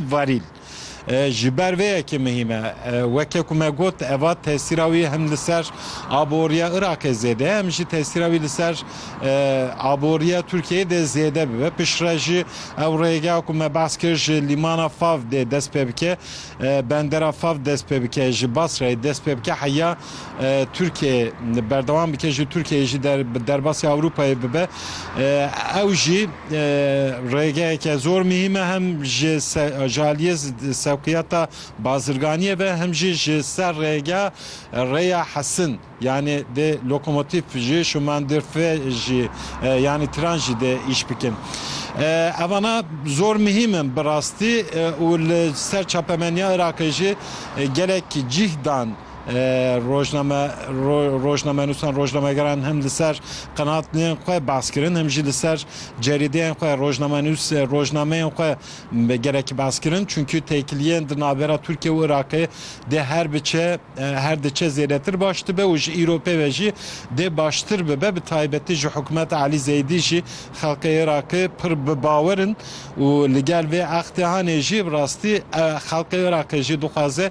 Varîl, Ji ber vê yekê mihîm e. Weke ku me got eva tesîra wî hem li ser aboriya Iraqê zêde ye hem jî tesîra wî li ser aboriya Tirkiyeyê dê zêde bibe. Piştre jî ew rêgeha ku me behs kir ji lîmana Fav dê dest pê bike, bendera Fav dest pê bike, ji Basrayê dest pê bike heya. Tirkiye berdewam bike ji Tirkiyeyê jî bi derbasî Ewropayê bibe ew jî rêgeyeke zor muhîm e hem ji ji aliyê sewqiyata bazirganiyê ve hem jî ji ser rêge rêya hesin yanî dê lokomotîf jî şûmandîrfê jî yanî tran jî dê îş bikin evana zor muhîm in bi rastî û li ser çapemeniya Iraqê jî gelek cîh dan. Rojname rojnamenûsan rojnamegeran him li ser qenatnên xwe behs kirin him jî li ser cerîdeyên xwe rojnamenûs rojnameyên xwe gelekî behs kirin çunkî têkiliyên di navbera Tirkiye û Iraqê dê her biçe her diçe zêdetir baş dibe û ji îro pê ve jî dê baştir bibe bi taybetî ji hikûmeta Elî Zeydî jî xelkê Iraqê pir bi bawer in û li gel vê extihanê jî bi rastî xelkê Iraqê jî dixwaze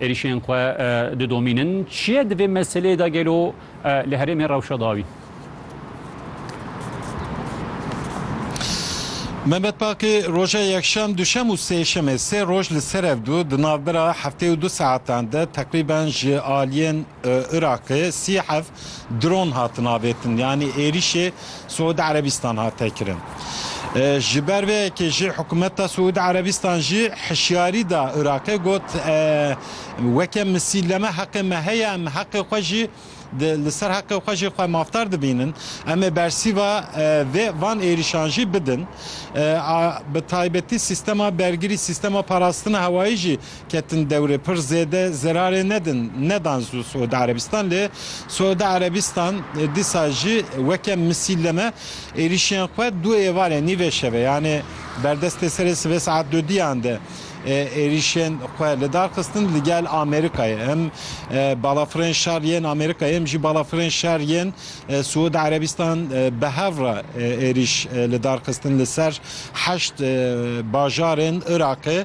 Êrîşên xwe didomînin. Çi ye di vê meseleyê de gelo li herêmê rewşa dawî? Mehmet Baqî, Roja yekşem, duşem û sêşemê sê roj li ser ev du di navbera heftê û du saetan de teqrîben ji aliyên Iraqê sî heft dron hatin avêtin yanî êrîşê Siûdî Erebîstan hate kirin. Ji ber vê yekê jî hikûmeta Siûdî Erebîstan jî hişyarî da Iraqê got, Weke misîle me heqê me heye em heqê xwe jî li ser heqê xwe jî xwe mafdar dibînin. Em ê bersîva vê van êrîşan jî bidin. A bi taybetî sîstema bergirî, sîstema parastina hewayî jî ketin dewrê pir zêde zerarê nedin nedan zû Siûdî Erebîstan lê Siûdî Erebîstan dîsa jî weke misîlleme êrîşên xwe du êvarê nîvê şevê yanê berdestê serê sibê saet du diyan de êrîşên xwe li dar xistin li gel Amerîkayê hem balafirên şer yên Amerîkayê hem jî balafirên şer yên Siûdî Erebîstan bi hev re êrîş li dar xistin li ser heşt bajarên Iraqê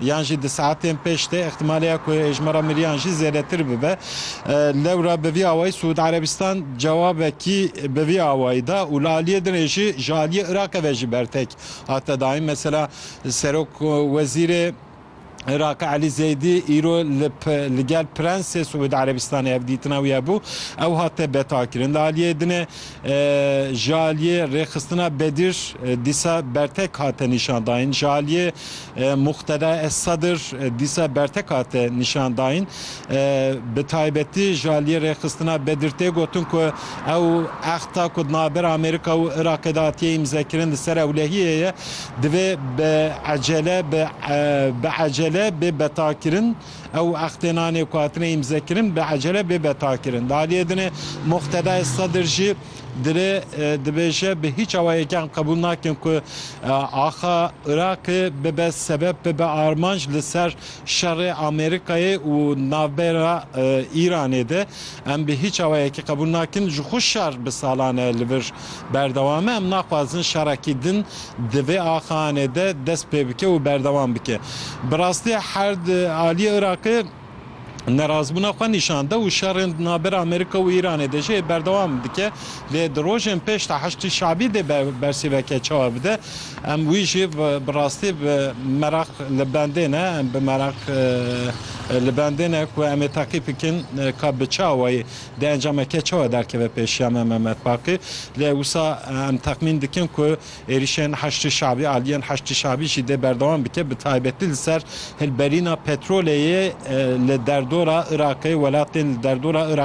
yan jî di saetên pêş de îhtimalê ye ku êjmara miriyan jî zêdetir bibe. Lewra bi vî awayî Siûd Erebistan cewabekî bi vî awayî da û li aliyê din ê jî ji aliyê Iraqê ve jî bertek hate dayîn. Mesela Serok Wezîrê Iraqê Elî Zeydî îro li li gel Prensê Siûd Erebistanê hevdîtina wî hebû ew hate betakirin. Li aliyê din e Ji aliyê rêxistina Bedir dîsa bertek hate nîşandayîn, ji aliyê Muqteda Es-Sedir dîsa bertek hate nîşandayîn. Bi taybetî ji aliyê rêxistina Bedir tê gotin ku ew exta ku di navber Amerîka û Iraqê de hatiye îmzekirin li ser ewlehiyê ye, divê bi ecele bi ecele bê betakirin. Ew extênanê ku hatine îmzekirin bi ecele bêbe takirin. Di aliyê din e Muqtedayê Sedir jî dirê dibêje bi hîç awayekîan qebûl nakin ku axa Iraqê bibe sebeb bibe armanc li ser şerê Amerîkayê û navbera Îranê de. Em bi hîç awayekî qebûl nakin ji xwe şer bi salan e li vir Berdewame em naxwazin şerekî din di vê axahanê de dest pê bike û berdewam bike. Bi rastî her di aliyê Iraqê nerazbûna xwe nîşan da û şerên di navber Amerîka û Îranê de jî berdewam dike. Lê di rojên pêş de Heşdî Şe'bî dê bersîveke çawa bide. Em wî jî bi rastî bi meraq li bendê ne. Em bi meraq li bendê ne ku em ê teqîb bikin ka bi çawayî Di encamê ke çawa derkeve pêşiya me Mehmet Baqî, lê wisa em texmîn dikin ku êrîşên Heşdî Şe'bî, aliyên Heşdî Şe'bî jî dê berdewam bike bi taybetî li ser hilberîna petrolê yê li derdora Iraqê, welatên li derdora Iraqê.